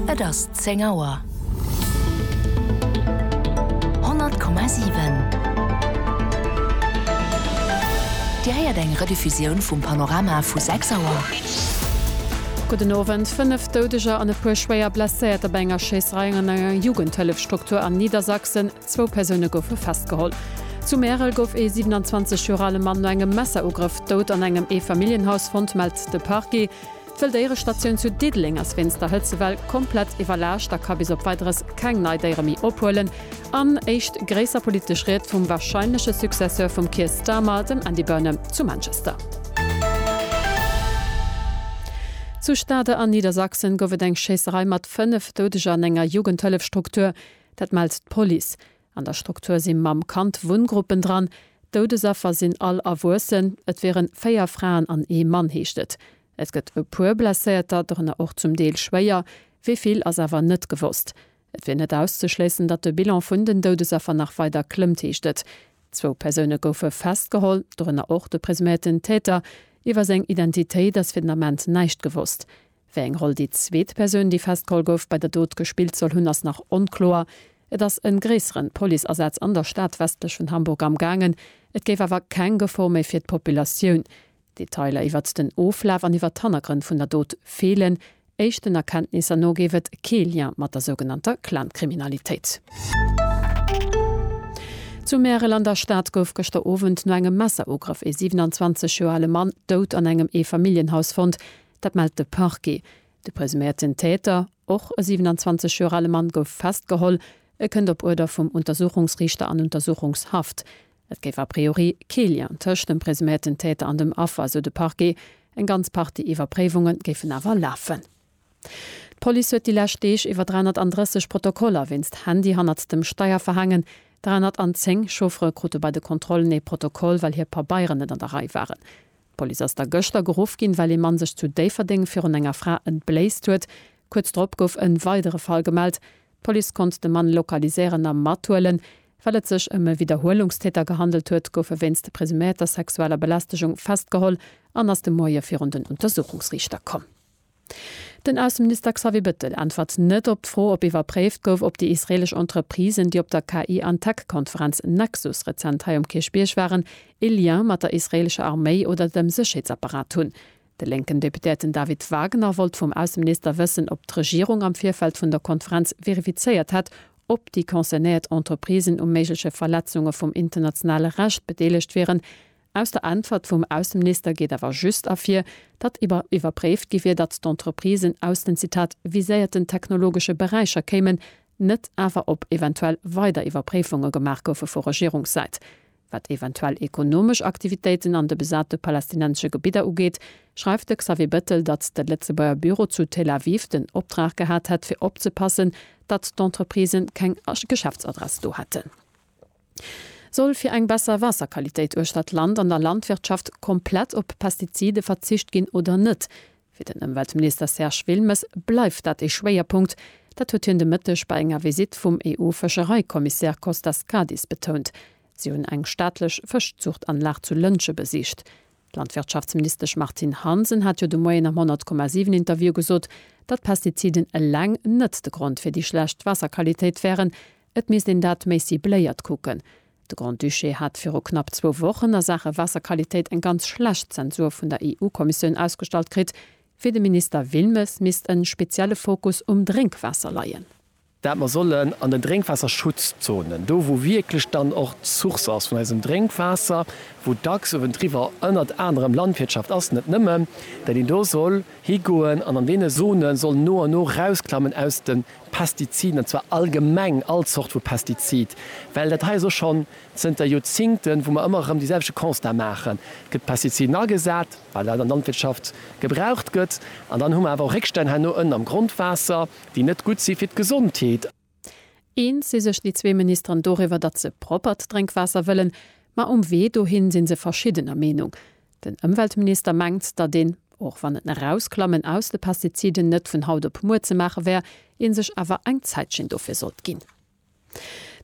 Et ass 10 Auer. 100,7 Dir héiert eng Rediffusioun vum Panorama vu 6 Auer. Gudden Owend. Fënnef Doudeger an e puer schwéier Blesséierter bei enger Schéisserei an enger Jugendhëllefstruktur an Niedersachsen. Zwou Persoune goufe festgeholl. Zu Märel gouf ee 27 Joer ale Mann no engem Messerugrëff dout an engem Eefamilljenhaus fonnt, mellt de Parquet. D'Wëlldéierestatioun zu Diddeleng ass wéinst der Hëtzewell komplett iwwerlaascht a ka bis op Weideres keng nei Déiere méi ophuelen. An éischt gréisser politesch Ried vum warscheinleche Successeur vum Keir Starmer, dem Andy Burnham zu Manchester. Zu Stade an Niedersachsen gouf et eng Schéisserei mat 5 Doudeger an enger Jugendhëllefstruktur. Dat mellt d'Police. An der Struktur si Mamm-Kand-Wunngruppen dran. D'Doudesaffer sinn all Erwuessen. Et wiere véier Fraen an ee Mann, heescht et. Et gëtt e puer Blesséierter, dorënner och zum Deel schwéier. Wéi vill ass awer net gewosst. Et wier net auszeschléissen, datt de Bilan vun den Doudesaffer nach weider klëmmt, heescht et. Zwou Persoune goufe festgeholl, dorënner och de presuméierten Täter. Iwwer seng Identitéit ass fir den Ament näischt gewosst. Wéi eng Roll déi zweet Persoun, déi festgeholl gouf, bei der Dot gespillt soll hunn, ass nach onkloer. Et ass e gréisseren Policeasaz an der Stad westlech vun Hamburg am gaangen. Et géif awer keng Gefor méi fir d'Populatioun. Detailer iwwert den Oflaf an iwwert d'Hannergrënn vun der Dot feelen. Éischten Erkenntnisser no géif et kee Lien mat der sougenannter Clan-Kriminalitéit. Zu Märel an der Stad gouf gëschter Owend no engem Messerugrëff ee 27 Joer ale Mann dout an engem Eefamilljenhaus fonnt. Dat mellt de Parquet. De presuméierten Täter, och e 27 Joer ale Mann, gouf festgeholl. E kënnt op Uerder vum Untersuchungsriichter an Untersuchungshaft. Et géif a priori kee Lien tëscht dem presuméierten Täter an dem Affer, sou de Parquet. Eng ganz Partie Iwwerpréiwunge géifen awer lafen. D'Police huet déi lescht Deeg iwwer 330 Protokoller wéinst Handy hannert dem Steier verhaangen. 310 Chauffere krute bei de Kontrollen ee Protokoll, well hir Pabeieren net an der Rei waren. D'Police ass da gëschter geruff ginn, well ee Mann sech zu Déifferdeng virun enger Fra entbléisst huet. Kuerz drop gouf e weidere Fall gemellt. D'Police konnt de Mann lokaliséieren a mathuelen. Well et sech ëm e Widderhuelungstäter gehandelt huet, gouf e wéinst presuméierter sexueller Belästegung festgeholl an ass de Moie virun den Untersuchungsriichter komm. Den Ausseminister Xavier Bettel äntwert net op d'Fro, ob iwwerpréift gouf, ob déi israeelesch Entreprisen, déi op der KI an Tech Konferenz Nexus rezent hei um Kierchbierg waren, ee Lien mat der israeelescher Arméi oder dem Sécherheetsapparat hunn. De lénken Deputéierten David Wagner wollt vum Ausseminister wëssen, ob d'Regierung am Virfeld vun der Konferenz verifizéiert hätt, ob déi concernéiert Entreprisen u méigleche Verletzunge vum internationale Recht bedeelegt wieren, Aus der Äntwert vum Ausseminister geet awer just ervir, datt iwwer iwwerpréift gi wier, datt d'Entreprisen aus den, Zitat, viséierten technologesche Beräicher kéimen, net awer ob eventuell weider Iwwerpréifunge gemaach goufe vu Regierungssäit. Wat eventuell ekonomesch Aktivitéiten an de besate palästinensesche Gebidder ugeet, schreift de Xavier Bettel, datt de Lëtzebuerger Büro zu Tel Aviv den Optrag gehat hätt fir opzepassen, datt d'Entreprisen keng Geschäftsadress do hätten. Soll fir eng besser Waasserqualitéit uechter d'Land an der Landwirtschaft komplett op Pestizide verzicht ginn oder net? Fir den Ëmweltminister Serge Wilmes bleift dat ee Schwéierpunkt. Dat huet hien de Mëtteg bei enger Visitt vum EU-Fëschereikommissär Kostas Kadis betount. Si hunn eng staatlech Fëschzuchtanlag zu Lëntge besicht. D'Landwirtschaftsministesch Martine Hansen hat jo de Moien am 100,7 Interview gesot, datt Pestiziden eleng net de Grond fir déi schlecht Waasserqualitéit wären, Et misst een dat méi cibléiert kucken. De Grand-Duché hat viru knapp zwou Wochen a Saache Waasserqualitéit eng ganz schlecht Zensur vun der EU-Kommissioun ausgestallt kritt. Fir de Minister Wilmes misst en spezielle Fokus um Drénkwaasser leien. Dat mer sollen an den Drénkwaasserschutzzonen, do wou wierklech dann och d'Source ass vun eisem Drénkwaasser, wou dacks uewendriwwer ënnert anerem Landwirtschaft ass, net nëmmen, dat een do soll higoen an an deene Zone soll no an no rausklammen aus de. Pestiziden, an zwar allgemeng all Zort vu Pestizid, well dat hei ass och schonn zënter Joerzingten, wou mer ëmmer erëm dee selwechte Constat maachen, et gëtt Pestiziden agesat, well dat an der Landwirtschaft gebraucht gëtt, an dann hu mer awer och Réckstänn herno ënnen am Grondwaasser, déi net gutt si fir d'Gesondheet. Eens si sech déi zwee Ministeren doriwwer, datt se proppert Drénkwaasser wëllen, ma um Wee dohin si se verschiddener Meenung. Den Ëmweltminister mengt, datt een, och wann et n'Erausklammen aus de Pestiziden net vun haut op muer ze maache wär, ee sech awer eng Zäitchen dofir sollt ginn.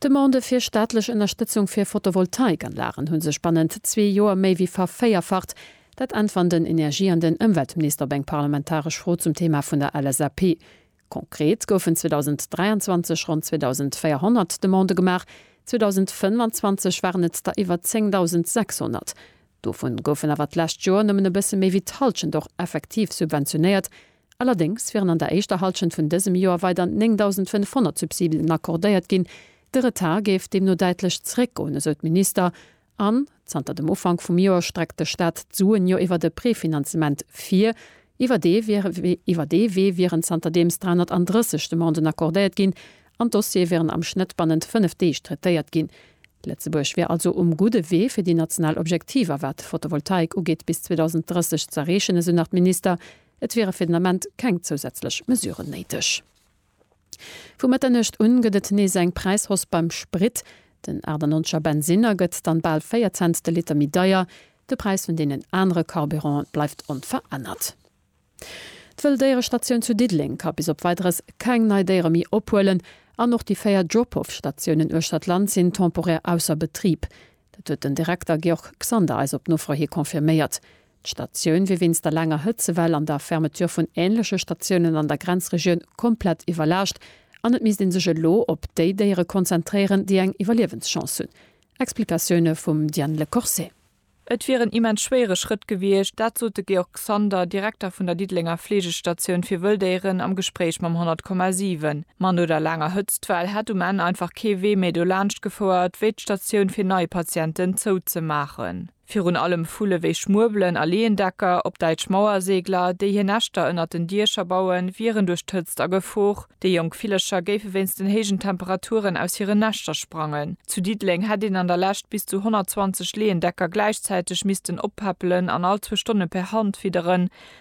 D'Demandë fir staatlech Ënnerstëtzung fir Photovoltaikanlagen hu sech bannent zwee Joer méi wéi vervéierfacht. Dat äntweren den Energie an den Ëmweltminister op eng parlamentaresch Fro zum Thema vun der LSAP. Konkret goufen 2023 ronn 2.400 Demandë gemaach, 2025 waren et der iwwer 10.600. Dovun goufen awer d'lescht Joer nëmmen e bësse méi wéi d'Hallschent och effektiv subventionéiert. Allerdéngs wieren an der éischter Hallschent vun dësem Joer weider 9.500 Subsiden accordéiert ginn. De Retard géif deemno däitlech zeréckgoen, esou d'Minister An zanter dem Ufank vum Joer streckt de Staat d'Suen jo iwwert e Prefinanzement vir. Iwwer dee iwwer dee Wee wieren zanterdeems 330 Demanden accordéiert ginn an d'Dossiere wieren am Schnëtt bannent fënnef Deeg traitéiert ginn. Lëtzebuerg wier also um gudde Wee fir déi national Objektiver wat d'Fotovoltaik ugeet bis 2030 z'erreechen, esou nach d'Minister. Et wiere fir den Ament keng zousätzlech Mesuren néideg. Vu Mëtternuecht un gëtt et nees eng Präishoss beim Sprit. Den 98er Bensinner gëtt dann bal 4 Cents de Liter méi deier. De Präis vun deenen anere Carburanten bleift onverännert. D'Wëlldéierestatioun zu Diddeleng ka bis op Weideres keng nei Déiere méi ophuelen an och déi 4 Drop-off-Statiounen uechter d'Land sinn temporär ausser Betrib. Dat huet den Direkter Georg Xander eis op Nofro hi confirméiert. D'Statioun wier wéinst der laanger Hëtzewell an der Fermeture vun änleche Statiounen an der Grenzregioun komplett iwwerlaascht an et misst ee sech elo op déi Déiere konzentréieren, déi eng Iwwerliewenschance hunn. Explikatioune vum Diane Le Corset. Et wier en immens schwéiere Schrëtt gewiescht, dat sot de Georg Xander, Direkter vun der Diddelenger Fleegestatioun fir Wëlldéieren am Gespréich mam 100,7. Ma no der laanger Hëtztwell hätt um Enn einfach kee Wee méi dolaanscht gefouert, wéi d'Statioun fir nei Patienten zouzemaachen. Virun allem Vulle wéi Schmuebelen a Leendecker, op Däitsch Mauerseegler, déi hir Näschter ënnert den Diecher bauen, wieren duerch d'Hëtzt a Gefor. Déi jonk Villercher géife wéinst den héijen Temperaturen aus hiren Näschter sprangen. Zu Diddeleng hätt een an der Lescht bis zu 120 Leendecker gläichzäiteg missten oppäppelen an all zwou Stonne per Hand fidderen,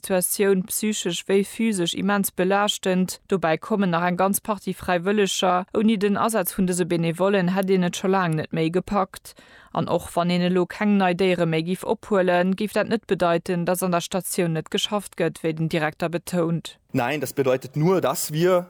Situatioun, psychesch wéi physesch, immens belaaschtend. Dobäi kommen nach eng ganz Partie Fräiwëlleger. Ouni den Asaz vun dëse Benevollen hätt een et scho laang net méi gepackt. An och wann een elo keng nei Déiere méi géif ophuelen, géif dat net bedeiten, dass an der Statioun net geschafft gëtt, wéi den Direkter betount. Nein, das bedeutet nur, dass wir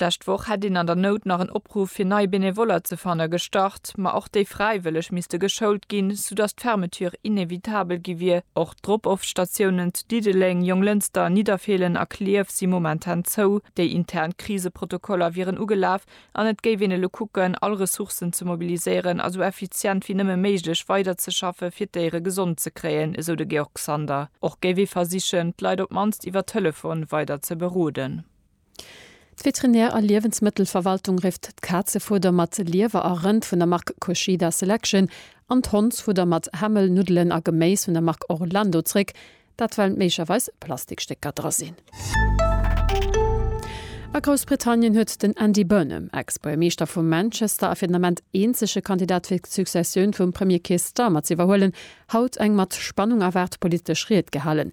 D'lescht Woch hätt een an der Nout nach en Opruff fir nei Benevoller ze fanne gestart, ma och déi Fräiwëlleg misste geschoult ginn, soudass d'Fermeture inevitabel gi wier. Och d'Drop-off-Statiounen zu Diddeleng, Jonglënster, Nidderfeelen a Klierf si momentan zou. Déi intern Kriseprotokoller wieren ugelaf an et géif een elo kucken, all Ressourcen ze mobiliséieren a sou effizient wéi nëmme méiglech weiderzeschaffe fir d'Déiere gesond ze kréien, esou de Georg Sander. Och géif ee versichen, d'Leit op d'mannst iwwer Telefon weider ze beroden. D'Veterinär a Liewensmëttelverwaltung rifft d'Kazefueder mat Liewer a Rënd vun der Mark Kushida Selection an d'Hondsfudder mat Hämmel, Nuddelen a Geméis vun der Mark Orlando zréck, dat well méiglecherweis Plastikstécker dra sinn. A Groussbritannien huet den Andy Burnham, Ex-Buergermeeschter vu Manchester a fir den Ament eenzege Kandidat fir d'Successioun vum Premier Keir Starmer z'iwwerhuelen, haut eng mat Spannung erwaart politesch Ried gehalen,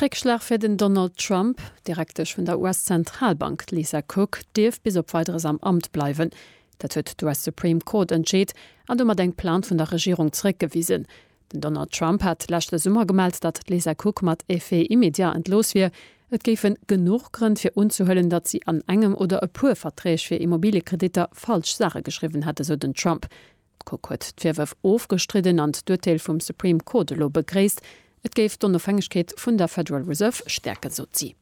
Réckschlag fir den Donald Trump, D'Direktesch vun der US-Zentralbank Lisa Cook dierf bis op Weideres am Amt bleiwen. Dat huet d'US Supreme Court entscheet an domat eng Plainte vun der Regierung zeréckgewisen. Den Donald Trump hat leschte Summer gemellt, datt d'Lisa Cook mat effet immédiat entlooss wier. Et géifen genuch Grënn fir unzehuelen, datt si an engem oder e puer Verträg fir Immobiliekreditter falsch Saache geschriwwen hätt, esou den Trump. D'Court huet d'Virwërf ofgestridden an d'Urteel vum Supreme Court elo begréisst. Et géif d'Onofhängegkeet vun der Federal Reserve stäerken, sot si.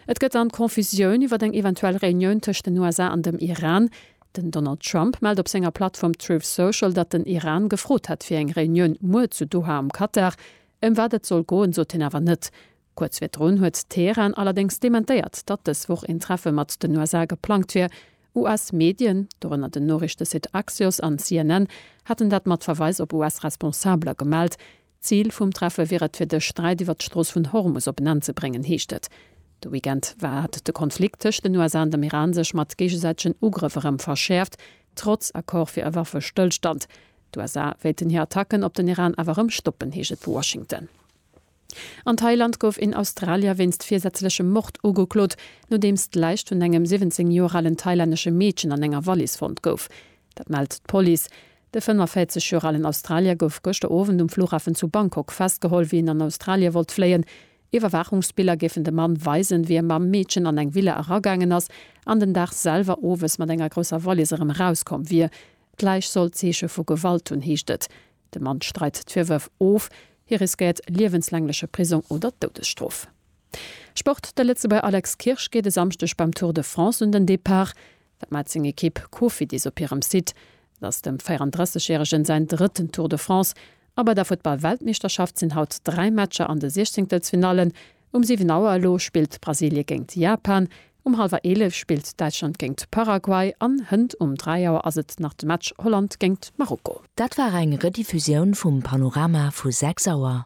Et gëtt dann Confusioun iwwer eng eventuell Reunioun tëscht den USA an dem Iran. Den Donald Trump mellt op senger Plattform Truth Social, datt den Iran gefrot hätt fir eng Reunioun muer zu Doha am Katar. Ëm wat et soll goen, sot hien awer net. Kuerz virdrun huet Teheran allerdéngs dementéiert, datt dës Woch een Treffe mat den USA geplangt wier. US-Medien, dorënner den Noriichtesite Axios an CNN, haten dat mat Verweis op US-Responsabeler gemellt. Zil vum Treffe wier et, fir de Sträit iwwer d'Strooss vun Hormus op en Enn ze bréngen, heescht et. De Weekend war hat de Konflikt tëscht den USA an dem Iran sech mat géigesäitegen Ugrëff erëm verschäerft, trotz Accord fir e Waffestëllstand. D'USA wéilten hir Attacken op den Iran awer erëm stoppen, heescht et vu Washington. An Thailand gouf een Australier wéinst virsätzlechem Mord ugeklot, nodeems d'Läich vun engem 17 Joer alen thailännesche Meedchen an enger Wallis fonnt gouf. Dat mellt d'Police. De 45 Joer alen Australier gouf gëschter Owend um Flughafen zu Bangkok festgeholl, wéi en an Australie wollt fléien. Iwwerwaachungsbiller géifen de Mann weisen, wéi e mam Meedchen an eng Villa eragaangen ass an den Dag selwer owes mat enger grousser Wallis erëm erauskomm wier. D'Läich soll Zeeche vu Gewalt hunn, heescht et. De Mann streit d'Virwërf of. Hie riskéiert liewenslängleche Prisong oder d'Doudesstrof. Sport, De Lëtzebuerger Alex Kirsch geet e Samschdeg beim Tour de France un den Depart. Wat mellt seng Ekipp Cofidis op hirem Site? Et ass dem 34 Järegen säin drëtten Tour de France. A bei der Futtball-Weltmeeschterschaft sinn haut dräi Matcher an de Siechzéngtelsfinallen. Um 7 Auer elo spillt Brasilie géingt Japan, um hallwer 11 spillt Däitschland géingt Paraguay an hënt um 3 Auer ass et nach de Match Holland géingt Marokko. Dat war eng Rediffusioun vum Panorama vu 6 Auer.